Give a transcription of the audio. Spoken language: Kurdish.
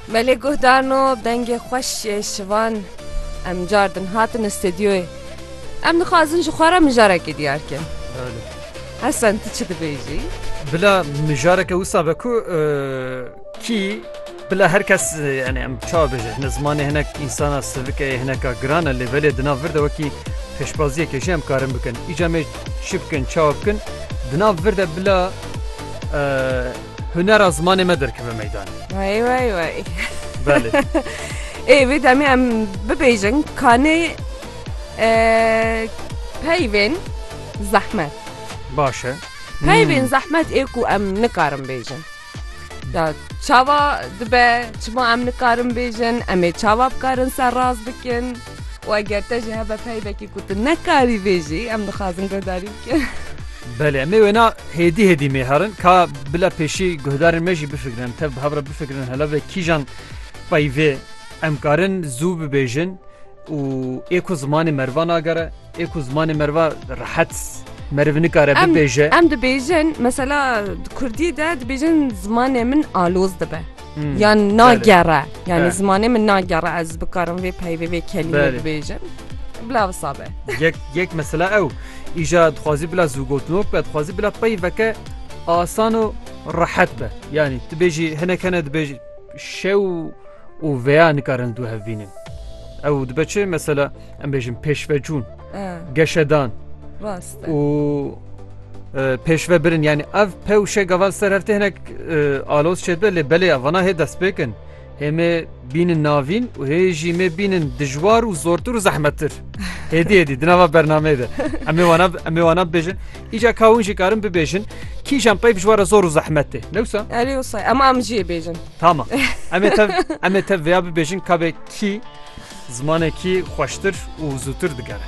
Me lê guh darno dengê xweş yê şivan em cardin hatin stêdyoyê. Em dixwazin ji xwe re mijarekê diyar kin. Hesen tu çi dibêjî? Bila mijareke wisa be ku kî bila her kes yani em çawa bêje hine zimanê hinek insana sivike yê hineka giran e lê belê di nav vir de wekî pêşbaziyekê jî em karin bikin. Îca me çi bikin çawa bikin di nav vir de bila Hunera zimanê me derkeve meydanê. Wey wey wey. Belê. Ê vê demê em bibêjin kanê peyvên zehmet. Baş e. Peyvên zehmet ê ku em nikarin bêjin. Ya çawa dibe çima em nikarin bêjin, em ê çawa bikarin serrast bikin? û eger te jî hebe peybekî ku tu nekarî vê jî em dixwazin guhdarî bikin. Belê em ê wêna hêdî hêdî mêherin ka bila pêşî guhdarên me jî bifikirin em tev bi hev re bifikirin hele vê kîjan peyvê em karin zû bibêjin û ê ku zimanê merva nagere Ê ku zimanê meriva rehet meriv nikare bibêje. Em dibêjin mesela Kurdî de dibêjin zimanê min aloz dibe. Yan nagere yani zimanê min nagere ez bikarim vê peyvê vê kelîmê dibêjin. Bila visabe. Yek yek mesela ew îja dixwazî bila zûgotinok be dixwazî bila peyveke asan û rehet be. Yani tu bêjî hinek hene dibêjî şew û veya nikarin du hevbînin. Ew dibe çi mesela em bêjin pêşvecûn geşedan û pêşve birin yani ev pewşe gaval ser hevtê hinek alos çêbe lê belê evana hê destpêkin hêmê bînin navîn û hê jî me bînin dijwar û zortir û zehmettir hêdî hêdî di nava bernameyê de em wana em wana bêjin îca kawin jî karin bibêjin kîjan pey bijwara zor û zehmet tê newsa em em jî bêjin tamam em em te vêya bibêjin kabê Kî zimanekî xweştir û zûtir digere.